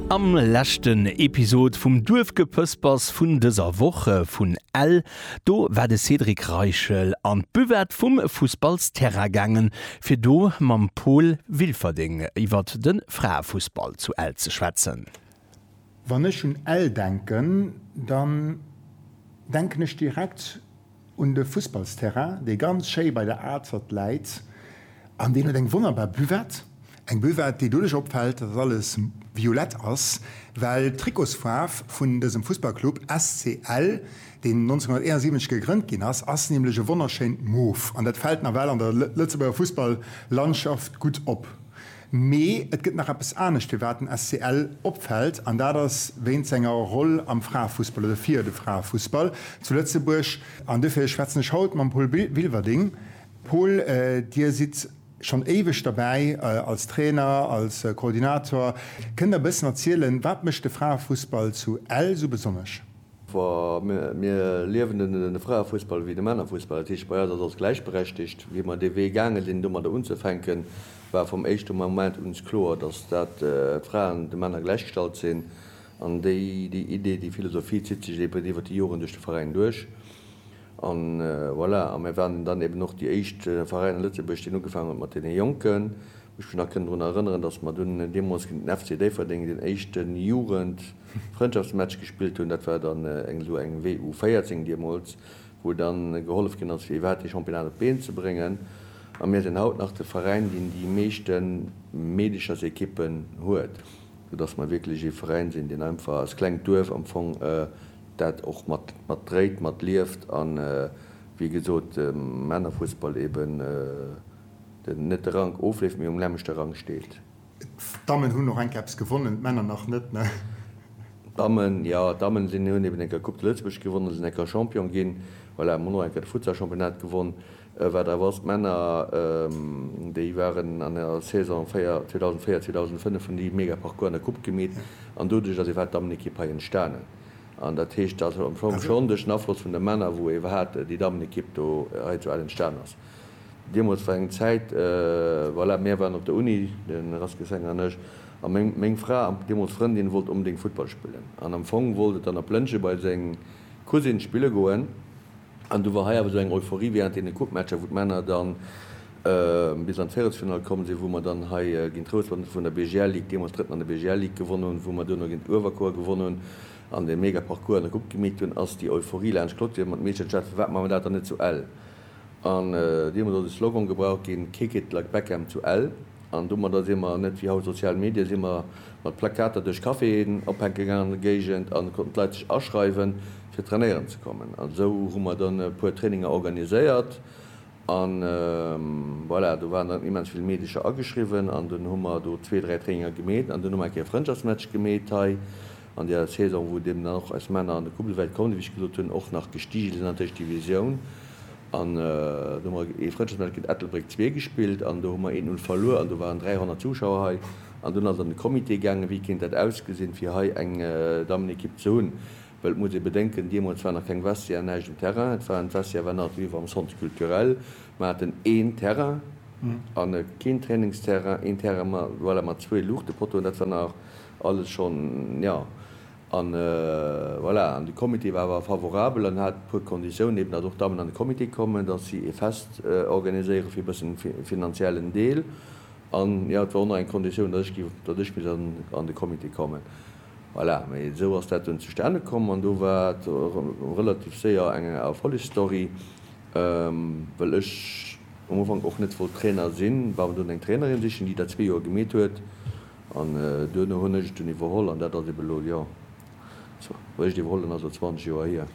Am leschten Episod vum Duerfgepëspers vun dëser Woch vun Ell, do war de Cédric Reichel an d'Buvette vum Fussballsterrain gaangen, fir do mam Paul Wilferding iwwert de Fraefussball zu Ell ze schwätzen. Wann ech un Ell denken, dann denken ech direkt un de Fussballsterrain, dee ganz schéi bei der Azert läit an deen huet eng wonnerbar Buvette. Eng Buvette, déi doduerch opfält, datt alles violett ass, well d'Trikotsfaarf vun dësem Fussballclub SC Ell, deen 1971 gegrënnt ginn ass, ass nämlech e wonnerschéint Mof an dat fält nawell an der Lëtzebuerger Fussball-Landschaft gutt op. Mee et gëtt nach eppes anescht, firwat den SCL opfält, an dat ass wéint senger Roll am Fraefussball oder fir de Fraefussball zu Lëtzebuerg. An dofir schwätzen ech haut mam Paul Wilwerding. Paul, Dir sidd schonn éiweg derbäi als Trainer, als Koordinator. Kënnt Der e bëssen erzielen, wat mécht de Fraefussball zu Ell esou besonnesch? Wa mir liewen den Fraefussball ewéi de Männerfussball, dat heescht bei eis ass alles gläichberechtigt. Wéi mer dee Wee gaange sinn domadder unzefänken, war vum éischte Moment uns kloer, dass dat d'Fraen de Männer gläichgestallt sinn. An déi déi Idee, déi Philosophie zitt sech eben iwwert déi Joren duerch de Veräin duerch. A voilà, a mir waren dann eben och déi éischt Veräin a Lëtzebuerg, deen ugefaangen huet mat deene Jonken. Ech mech nach kënnen drun erënneren, dass mer dunn deemools géint den FC Déifferdeng den éischten Jugend. Frëndschaftsmatch gespillt hunn. Dat war dann eng esou eng W U 14 deemools, wou dann gehollef ginn ass fir iwwerhaapt dee Championnat op d'Been ze bréngen. A mir sinn haut nach de Veräin deen déi meeschte Meedechersekippen huet, sou dass mer wierklech ee Veräin sinn deen einfach als klengt Duerf am Fong dat och mat mat dréit, mat lieft an wéi gesot Männerfussball eben net de Rank ofleeft mee um nämmlechte Rang steet. D'Dammen hunn och enk eppes gewonnen, d'Männer nach net, ne? D'Dammen, jo, d'Dammen sinn, hunn eben enker Coupe de Lëtzebuerg gewonnen, sinn enker Champion ginn, voilà, mer hunn och enker de Futsal-Championnat gewonn. Wat awer ass, d'Männer, déi waren an der Saison 2004, 2005, hunn déi mega Parcours an der Coupe gemeet an doduerch ass iwwerhaapt d'Dammenekipp hei entstanen. An dat heescht, dat ass am Fong schonn duerch den Afloss vun de Männer, wou ee iwwerhaapt déi Dammenekipp do hei zu Ell entstanen ass. Deemools war eng Zäit, voilà, mär waren op der Uni, de Raskel Senger an ech, a meng, meng Fra an deemools Frëndin wollt onbedéngt Futtball spillen. An am Fong wollt et dann op Lëntgen bei seng Cousine spille goen. An du war hei awer esou eng Euphorie während deene Coupematcher, wou d'Männer dann bis an d'Véierelsfinall komm sinn, wou mer dann hei géint Trousdorf an vun der BGL Ligue, deemools Drëtten an der BGL Ligue, gewonnen hunn, wou mer duerno géint Uewerkuer gewonnen hunn an dee mega Parcours an der Coupe gemeet hunn, ass déi Euphorie laanscht d'Clôture mat Meeschert gelaf, firwat maache mer dat dann net zu Ell? An deemools ass e Slogan gebraucht ginn, Kick it like Beckham to Ell. An domadder si mer, net wéi haut sozial Medien, si mer mat Plakater duerch Caféen ophänke gaangen an der Géigend an konnten d'Leit sech aschreiwen, fir trainéieren ze kommen. An esou hu mer dann e puer Traininger organiséiert an voilà, do waren dann immens vill Meedecher ageschriwwen an dunn hu mer do zwee, dräi Traininger gemeet an dunn hu mer eng Kéier e Frëndschaftsmatch gemeet hei. An der Saison, wou deemno och eis Männer an de Coupe de Welt koumen, wéi ech gesot hunn, och nach gestige sinn an d'Éischt Divisioun, an do hu mer ee Frëndschaftsmatch géint Ettelbréck zwee gespillt an do hu mer eent Null verluer an do waren 300 Zuschauer hei an dunn ass et an de Comité gaangen, wéi kéint dat ausgesinn, fir hei eng Dammenekipp ze hunn, well et muss ee bedenken, deemools war nach keng Vestiaire, näischt um Terrain, et waren, d'Vestiaire war nach d'Vivre am Centre Culturel, mer haten een Terrain a keen Trainingsterrain, een Terrain, voilà, mat zwee Luuchtepottoen, dat war nach Alles schonn, jo. An voilà, an de Comité war awer favorabel an hat e puer Konditiounen, eben datt och d'Dammen an de Comité kommen, datt si e Fest organiséiere fir e bëssen e finanziellen Deel. An jo, et war och nach eng Konditioun, datt ech gi, datt ech misst an de Comité kommen. Voilà, mee esou ass dat dunn zustane komm an do war et relativ séier eng Erfollegsstory, well ech um Ufank och net wollt Trainer sinn, war dunn eng Trainerin sichen, déi dat zwee Joer gemeet huet An duerno hunn ech et dunn iwwerholl an dat ass eben elo, jo, also wéi ech et iwwerholl hunn, ass elo 20 Joer hier.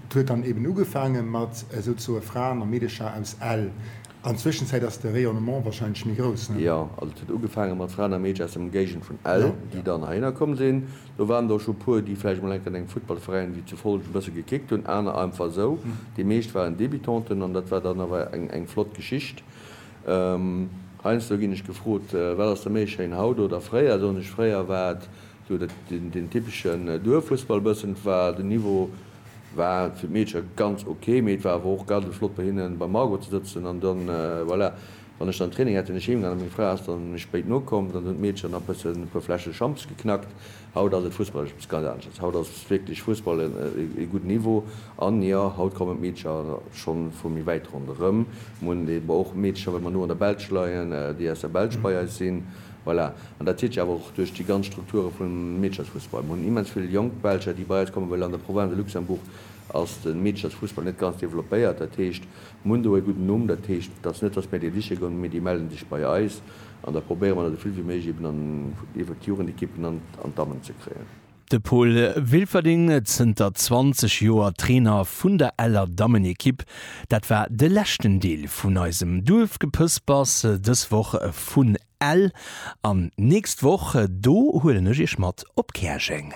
Et huet dann eben ugefaange mat esou ze soe Fraen a Meedecher aus Ell. An d'Zwëschenzäit ass de Rayonnement wahrscheinlech méi grouss, ne? Jo, also et huet ugefaange mat Fraen a Meedcher aus der Ëmgéigend vun Ell, déi dann heihinner komm sinn. Do waren der och scho e puer, déi vläicht mol enk an engem Futtballveräin wéi zu Follgen e bësse gekickt hunn, aner einfach esou. Déi meescht waren Débutanten an dat war dann awer eng flott Geschicht. Heiansdo ginn ech gefrot, Wat ass der méi schéin, haut oder fréier? Soen ech, Fréier war et esou deen typeschen Duerffussball bëssen. War den Niveau war fir d'Meedcher ganz ok, mee et war awer och garde flott bei hinnen beim Margot ze sëtzen. An dann, voilà, wann ech dann Training hat, sinn ech heemgaan a meng Fra ass dann méi spéit nokomm. Dann hunn d'Meedcher nach bëssen e puer Fläsche Champs geknackt. Haut ass et fussballesch eppes ganz anesches. Haut ass wierklech Fussball e gudden Niveau. An jo, haut kommen d'Meedercher scho vu méi wäit ronderëm. Mir hunn eben och Meedercher, well mer no an der Belsch leien, déi aus der Belsch bei eis sinn. Voilà. An dat zitt sech awer och duerch déi ganz Strukture vum Meederchersfussball. Mir hunn immens vill jonk Belger, déi bei eis kommen, well an der Province de Luxembourg ass de Meederchersfussball net ganz developpéiert. Dat heescht, mir hunn do e gudden Numm. Dat heescht, et ass net, dass mir déi siche goen, mee déi melle sech bei eis. An da probéiere mer dat esouvill wéi méiglech eben an iwwert d'Jugendequippen an d'Dammen ze kréien. De Paul Wilferding, zënter 20 Joer Trainer vun der Eller Dammenequipe. Dat war de leschten Deel vun eisem Duerfgepëspers dës Woch vun Ell. An d'nächst Woch, do huelen ech iech mat op Käerjeng.